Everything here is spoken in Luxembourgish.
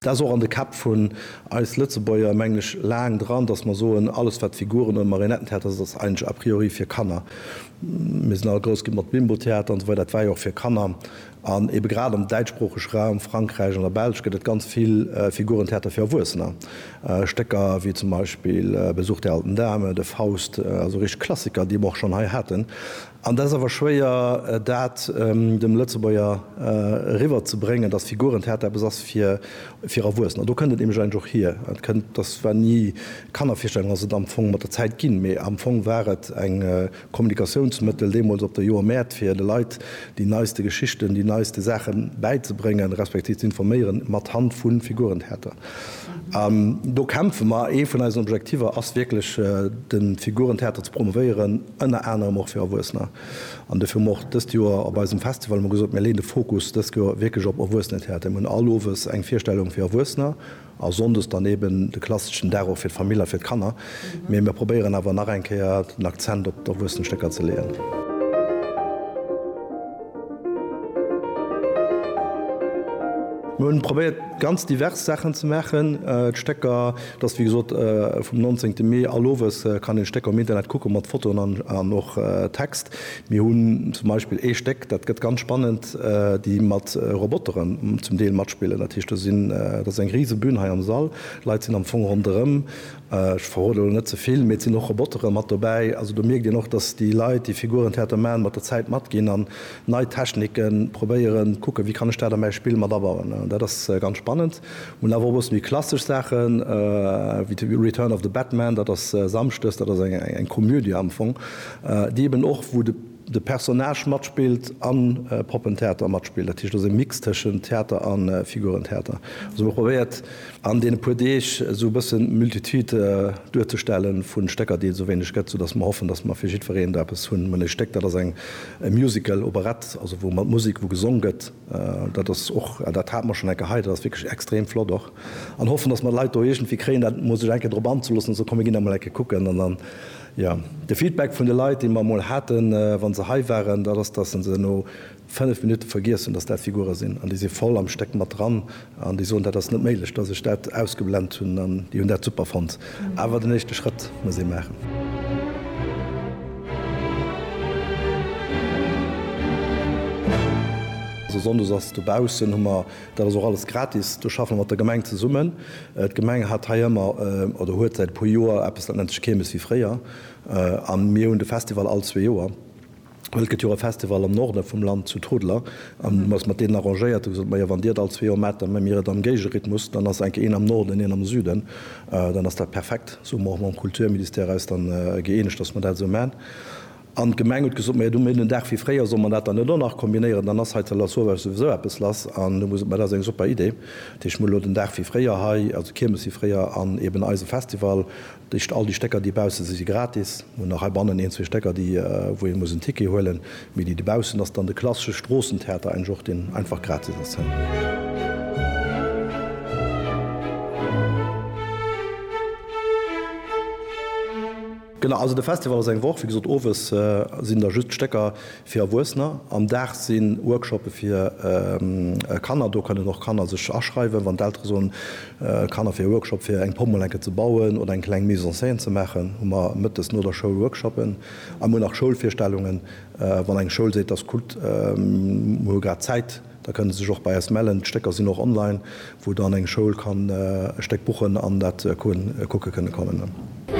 Dat ass och an de Käpp vun eis Lëtzebuerger, mengen ech, laang dran, dass mer soen, alles wat Figuren oder Marionettentheater ass, ass eigentlech a priori fir Kanner. Mir sinn all grouss ginn mat Bimbo-Theater an esou weider, dat war jo och fir Kanner. An eebe grad am däitschsproochege Raum, Frankräich, an der Belsch gëtt et ganz vill Figurentheater fir Erwuessener, Stécker wéi zum Beispill Besuch der alten Dame, de Faust, also richteg Klassiker, déi mer och schonn hei haten. An et ass awer schwéier, dat dem Lëtzebuerger eriwwer ze bréngen, dass Figurentheater eppes ass fir Erwuessener. An do kënnt et nämlech eigentlech och hier. Et kënnt, dass war ni, Kannervirstellung ass et am Fong mat der Zäit ginn, mee am Fong war et eng Kommunikatiounsmëttel deemools op der Joermäert, fir de Leit déi neiste Geschichten, déi neiste Saache bäizebréngen, respektiv ze informéieren, mat Hand vu Figurentheater. An do kämpfe mer. Ee vun eisen Objektiver ass wierklech, de Figurentheater ze promovéieren. ënner anerem och fir Erwuessener. An dofir hu mer och dëst Joer op eisem Festival hu mer gesot, mir leeën de Fokus dëst Joer wierklech op Erwuessenentheater. Mir hunn all Owes eng Virstellung fir Erwuessener a Sonndes dann eeben de klasseschen Dag och fir d'Famill a fir d'Kanner. Mee mir probéieren awer nach eng Kéier den Akzent op d'Erwuessenstécker ze leeën. Mir hunn probéiert ganz divers Saachen ze maachen. D'Stécker. Et ass wéi gesot vum 19 Mee all owes, kann een d'Stécker um Internet kucken, mat Fotoen an och Text. Mir hunn zum Beispill ee Stéck, dat gëtt ganz spannend, déi mat Roboteren zum Deel matspillen. Dat heescht, do sinn, dat ass eng rise Bün hei am Sall, Leit sinn am Fong ronderëm, ech verroden elo net ze vill, mee et sinn och Robotere mat dobäi. Also do mierkt een och, datt déi Leit, déi Figurentheater maachen, mat der Zäit matginn an nei Technike probéieren, kucken, wéi kann ech dat a mäi Spill mat abauen. Dat ass ganz spannend. Hunn awer och e bësse méi klassesch Saachen, wéi The Return of the Batman, dat ass Samschdes, dat ass eng Komödie am Fong, déi eben och, wou de Personnage matspillt a Poppentheater matspillt. Dat heescht, dat ass e Mix tëschent Theater a Figurentheater. Also mir probéiert an deene puer Deeg esou e bëssen d'Multitude duerzestelle vu Stécker, déi et esou wéineg gëtt, soudass mer hoffen, dass mer fir jiddwereen do eppes hunn. Mir hunn e Stéck, dat ass e Musical, Operett, also wou mat Musek, wou gesong gëtt. Dat ass och, dat hate mer schonn eng Kéier hei, dat ass wierklech extrem flott och. An hoffen, datt mer d'Leit do iergendwéi kréien, dat emol sech eng Kéier drop anzeloossen, ze soen, komm mir ginn da mol eng Kéier kucken. An dann, jo, de Feedback vun de Leit, dee mer emol haten, wa se hei waren, dat ass, datt se no fënnef Minutte vergiess hunn, datt dat Figure sinn. An déi si voll am Stéck mat dran, An déi soen, dat ass net méiglech, dass ech dat ausgeblend hunn, an déi hunn dat super fonnt. Awer den éischte Schrëtt muss ee maachen. Also sonndes ass dobaussen, hu mer, dat ass och alles gratis, do schaffe mer mat der Gemeng zesummen. D'Gemeng hat hei ëmmer, oder huet säit e puer Joer eppes, dat nennt sech Keermes, wéi fréier, a mir hunn de Festival all zwee Joer. Well et gëtt jo och e Festival am Norde vum Land, zu Trudler, an hu eis mat deenen arrangéiert, déi gesot, Majo, wann Dir et all zwee Joer maacht, da méi mir et am Géigerhythmus, dann ass enke een am Norden, een am Süden, dann ass dat perfekt. Sou hu mer och mam Kulturministère eis dann gëeenegt, dass mer dat esou maachen. An d'Gemeng huet gesot, Majo, du, mir hunn en Dag fir fréier, solle mer dat dann net och nach kombinéieren, dann ass hei zu Lasauvage souwisou eppes lass. An hu mer gesot, Ma dat ass eng super Idee, dat heescht, mir hu elo den Dag fir fréier hei, also d'Kiermes fir fréier an eeben eise Festival, Dëscht all déi Stécker déi baussen si si gratis. Mir hunn nach hei bannen een zwee Stécker déi wou ee muss en Ticket huelen, mee déi dobaussen ass dann de klassesche Stroossentheater engg och deen einfach gratis ass. Genau, also de Festival ass eng Woch, wéi gesot owes sinn da just d'Stécker Fir Erwuessener. Am Dag si Workshoppe fir Kanner, do kënnen och Kanner sech aschreiwen, wann d'Eltere soen, Kanner fir e Workshop fir eng Pomm mol enke ze bauen oder eng kleng Mise en scène ze maachen, hu mer mëttes no der Schoul Workshoppen. A mir hu nach Schoulvirstellungen, wann eng Schoul seet, dass kuckt mir hu grad Zäit, da kënnen se sech och bei eis mellen. D'Stécker sinn och online, wou dann eng Schoul kann e Stéck buchen an dat kucke kënnen kommen.